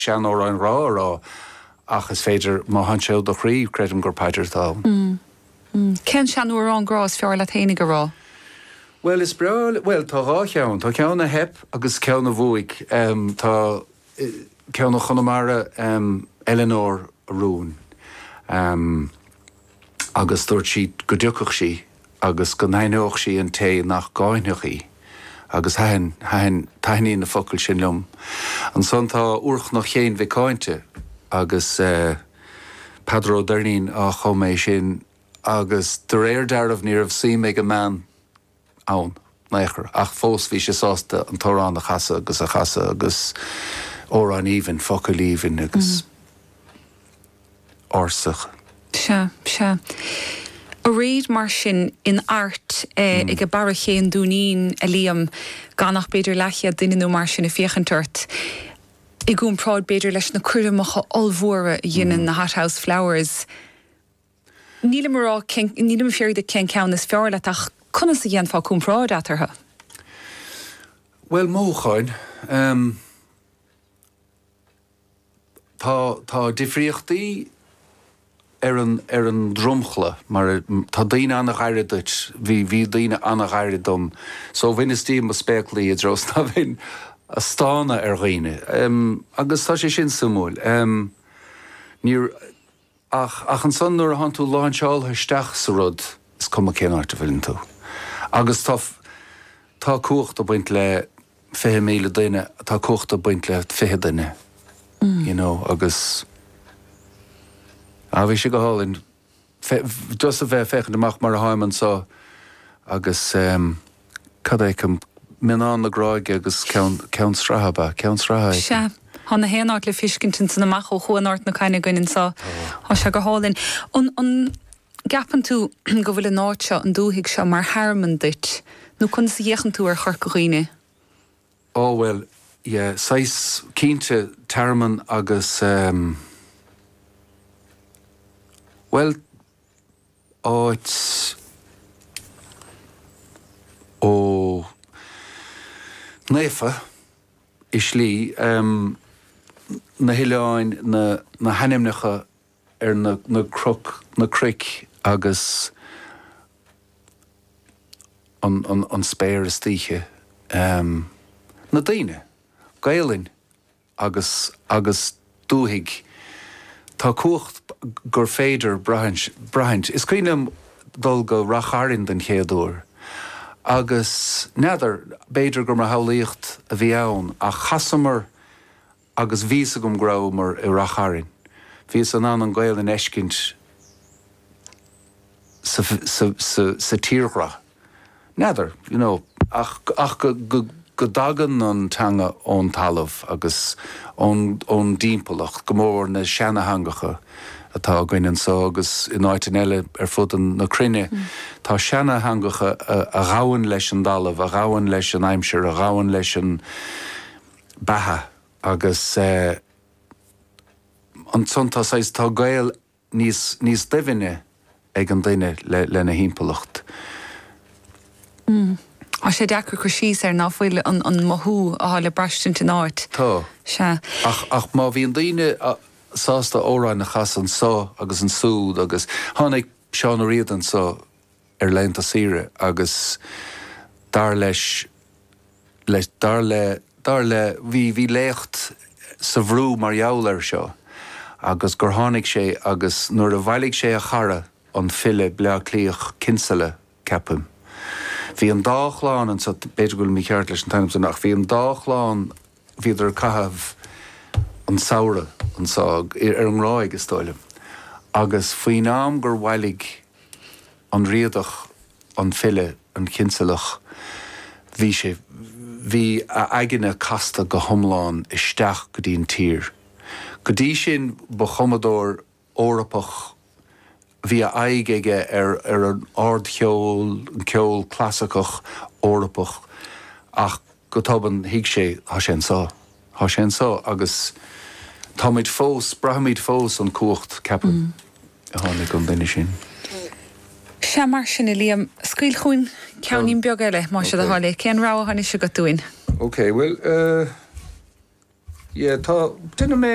seanamhráin ghrá a rá ach is féidir, má thánn sé ó do chroí, creidim gur paidir atá ann. Mmm. Mmm. Cén seanamhrán grá is fearr leat fhéinig a rá? Bhuel, is breá, bhuel, tá dhá cheann. Tá ceann a theip agus ceann a bhuaigh. Ehm, tá, eh, ceann ó Chonamara, ehm, Eileanóir a Rúin. Ehm. agus dúirt sí go dtiocfadh sí agus go n-aithneodh sí an té nach gcáinfeadh í, agus thaitin, thaitin, taitníonn na focail sin liom. Ansan tá Úrchnoc Chéin Mhic Cáinte agus eh Peadar Ó Doirnín a chum é sin agus de réir dealraimh ní raibh suim ag an mbean, ann in aon chor, ach fós bhí sé sásta an t-amhrán a chasadh agus a chasadh agus amhrán aoibhinn, focail aoibhinn agus ársa. Sea, sea. Aréir mar sin in airde ag Barra Ché an Dúinín, a Liam, gan ach b'fhéidir leathchéad duine nó mar sin ag féachaint ort, i gcompráid b'fhéidir leis na coirmeacha ollmhóra a dheineann na Hothouse Flowers, Nílim a rá cén, nílim ag fiafraí díot cén ceann is fearr leat ach conas a dhéanfá comparáid eatarthu? Bhuel, mothúcháin. Tá, tá difríochtaí ar an, ar an dromchla mar a, tá daoine an-ghairid duit, bhí, bhí daoine an-ghairid dom so bhaineas díom mo spéaclaí i dtreo 's ná bheinn a' stánadh ar dhaoine. Agus tá sé sin suimiúil. Níor. Ach ansan nuair a thánn tú láinseáltha isteach sa rud, is cuma cén áit a bhfuileann tú. Agus tá, tá cumhacht ag baint le fiche míle duine, tá cumhacht ag baint le fiche duine, you know, agus, á, bhí sé go hálainn fé, just a bheith ag féachaint amach mar a tháim anseo agus, em, cad a fheicim? Mionnán na Gráige agus Ceann, Ceann Sraithe ab ea? Ceann Sraithe a fheicim. Sea. Tá na haon áit le feiscint ansan amach ó Chuan Ard na Caithne againn anso. Tá. Tá sé go hálainn. An, an gceapann tú go bhfuil an áit seo, an dúthaigh seo mar thearmann duit nó conas a fhéachann tú ar Chorca Dhuibhne? Ó bhuel, yeah, saghas, cinnte tearmann agus eh, bhuel, áit ó naofa i slí, na hoileáin, na hainmneacha ar na cnoic agus an spéir istoíche, na daoine, Gaelainn. agus agus dúthaigh. Tá cumhacht gur féidir leat braithint. Is cuimhin liom dul go Rath Chairn den chéad uair agus n'fheadar, b'fhéidir gur mo shamhlaíocht a bhí ann, ach chasamar agus bhí fhios agam go rabhamar i Rath Chairn. Bhíos in ann an Ghaelainn a fheiscint insa tírdhreach. N'fheadar, you know, ach go dtagann an teanga ón talamh agus ón dtimpeallacht, go mór mór na seanatheangacha atá againn anso agus in áiteann eile ar fuaid na cruinne. Tá seanatheangacha a ghabhann leis an dtalamh, a ghabhann leis an aimsir, a ghabhann leis an beatha agus ansan tá saghas, tá gaol níos doimhne ag an duine lena thimpeallacht. Tá sé deacair cur síos ar, n'fheadar, an mothú athá le braistint in áit. Tá. Sea. Ach má bhí na daoine sásta amhráin a chasadh anso agus ansúd agus tháinig Seán Ó Riada anso ar laethanta saoire agus dar leis, dar le, dar le, bhí, bhí léacht sa Bhrú mar gheall air seo agus gur tháinig sé agus nuair a bhailigh sé a chara, an file Bleá Cliach, Kinsella, ceapaim. Bhí an dá chlann anseo, b'fhéidir go bhfuilim mícheart leis an ainm san ach bhí an dá chlann, bhíodar ag caitheamh an samhradh anso, ar an nGráig is dóigh liom agus faoin am gur bhailigh, an Riadach, an file, an Chinsealach, bhí sé, bhí a aigne casta go hiomlán isteach go dtí an tír. Go dtí sin ba chumadóir Eorpach, bhí aghaidh aige ar an ardcheol, an ceol clasaiceach Eorpach ach, Go tobann, thuig sé, thá sé anso. Thá sé anso agus táimid fós, braithimid fós an cumhacht, ceapaim, a tháinig ón duine sin. Sea, mar sin é, Liam. Scaoil chugainn ceainnín beag eile, más é do thoil é. Cén rogha atá anois agat dúinn? Ok, bhuel, eh, yeah, tá, deineadh mé.